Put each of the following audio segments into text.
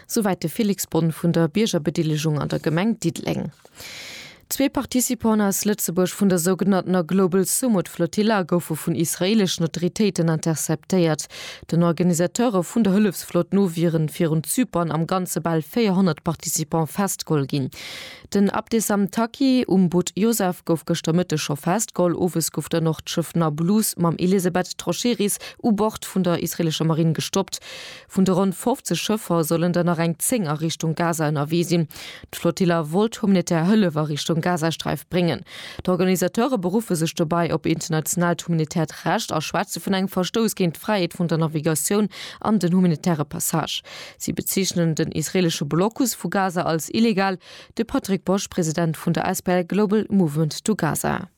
Souwäit de Félix Bonne vun der Biergerbedelegung an der Gemeng Diddeleng. Zwee Participanten aus Lëtzebuerg vun der sougenanntener Global Sumud Flotilla goufe vun israeeleschen Autoritéiten interceptéiert. Den Organisateure vun der Hëllefsflott no wiere virun Zypern am Ganze bal 400 Participante festgeholl ginn. Den Abdesam Taqi um Boot Yosef gouf gëschter Mëtteg scho festgeholl. Owes gouf dann och d'Schëff Nablus mam Elisabeth Trocheris u Bord vun der israeelescher Marinn gestoppt. Vun de ronn 50 Schëffer sollen der nach eng 10 a Richtung Gaza ënnerwee sinn. D'Flotilla wollt humanitär Hëllef a Richtung Gazasträif bréngen. D'Organisateure beruffe sech dobäi op internationaalt humanitäert Recht a schwätze vun engem Verstouss géint d'Fräiheet vun der Navigatioun an den humanitäre Passage. Si bezeechnen den israeelesche Blocus vu Gaza als illegal. De Patrick Bosch, President vun der SPL Global Movement to Gaza.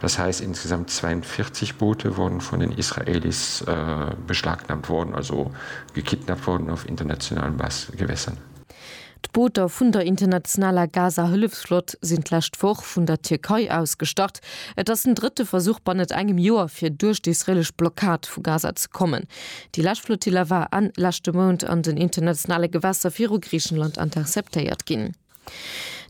Das heißt, insgesamt 42 Boote wurden von den Israelis beschlagnahmt worden, also gekidnappt worden auf internationalen Gewässern. D'Booter vun der internationaler Gaza-Hëllefsflott sinn d'lescht Woch vun der Tierkei aus gestart. Et ass den drëtte Versuch bannet engem Joer, fir duerch d'israelesch Blockad vu Gaza ze kommen. Déi lescht Flotilla war Enn leschte Mount an den internationale Gewässer viru Griichenland interceptéiert ginn.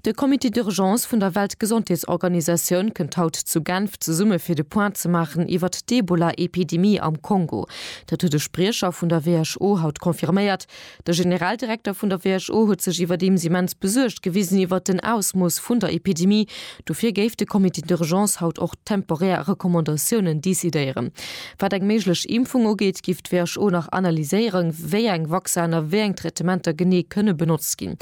De Comité d'urgence vun der Weltgesondheetsorganisatioun kënnt haut zu Genf zesumme fir de Point ze maachen iwwert d'Ebola-Epidemie am Kongo. Dat huet e Spriecher vun der WHO haut confirméiert. De Generaldirekter vun der WHO huet sech iwwerdeems immens besuergt gewisen iwwert den Ausmooss vun der Epidemie. Dofir géif de Comité d'urgence haut och temporär Recommandatiounen decidéieren. Wat eng méiglech Impfung ugeet, giff d'WHO nach analyséieren, wéi eng Vacciner, wéi eng Traitementer genee kënne benotzt ginn.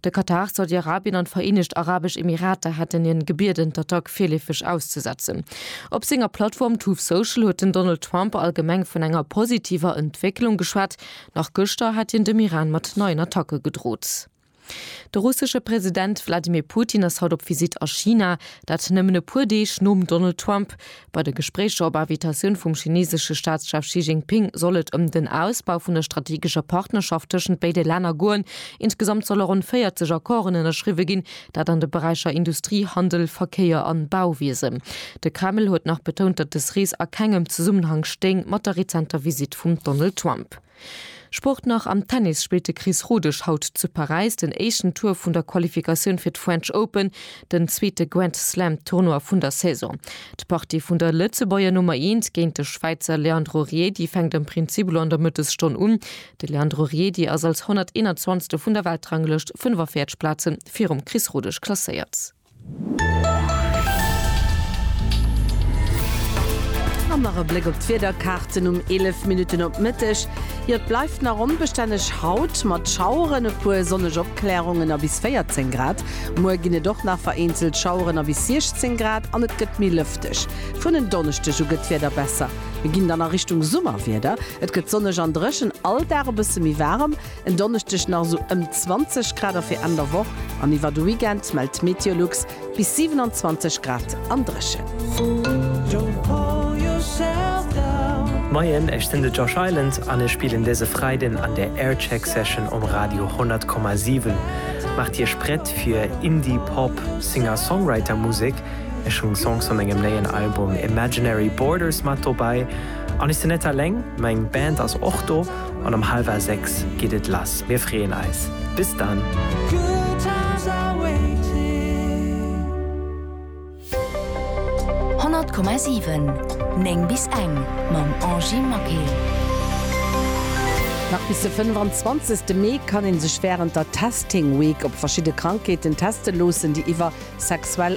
De Katar, Saudi-Arabien an d'Vereenegt Arabesch Emirater haten hien gebieden, d'Attack virleefeg auszesetzen. Op senger Plattform Truth Social huet den Donald Trump allgemeng vun enger positiver Entwécklung geschwat. Nach gëschter hat hien dem Iran mat neien Attacke gedrot. De russesche President Wladimir Putin ass haut op Visitt a China, dat nëmmen e puer Deeg nom Donald Trump. Bei de Gespréicher op Invitatioun vum chinesesche Staatschef Xi Jinping soll et ëm den Ausbau vun der strategescher Partnerschaft tëschent béide Länner goen. Insgesamt solle ronn 40 Accorden ënnerschriwwe ginn, dat an de Beräicher Industrie, Handel, Verkéier an Bauwiesen. De Kreml huet nach betount, datt des Rees a kengem Zesummenhang stéing mat der rezenter Visitt vum Donald Trump. Sport nach, Am Tennis spillt de Chris Rodesch haut zu Paräis den éischten Tour vun der Qualifikatioun fir d'French Open, den zweete Grand Slam Tournoi vun der Saison. D'Partie vun der Lëtzebuerger Nummer eent géint de Schwäizer Leandro Riedi fänkt am Prinzip elo an der Mëttesstonn un. De Leandro Riedi ass als 121. vun der Weltranglëscht 45 Plaze virum Chris Rodesch klasséiert. An nach e Bléck op d'Wiederkaarten um 11 Minutten op Mëtteg. Jo, et bleift nach onbestänneg haut, mat Schaueren, e puer sonneg Opklärungen a bis 14 Grad. Muer ginn et och nach vereenzelt Schaueren a bis 16 Grad an et gëtt méi lëfteg. Vun en Donneschdeg u gëtt d'Wieder besser, mir ginn dann a Richtung Summerwieder. Et gëtt sonneg an dréchen, all Dag e bësse méi waarem. En Donneschdeg nach esou ëm 20 Grad a fir Enn der Woch an iwwer de Weekend mellt d'Meteolux bis 27 Grad an dréchen. Moien, ech sinn de Josh Island an ech spillen dëse Freiden an der Aircheck Session um Radio 100,7. Maacht Iech prett fir Indie-Pop Singer-Songwriter Musek. Ech hunn Songs vu mengem néien Album Imaginary Borders mat dobäi. An ech sinn net alleng, meng Band ass och do. an um halwer 6 geet et lass. Mir freeën eis. Bis dann! Honnert Komma siwen, néng bis eng mam Angie Maquet. Nach bis de 25 Mee kann ee sech wärend der Testing Week op verschidde Krankheeten teste loossen, déi iwwer sexuell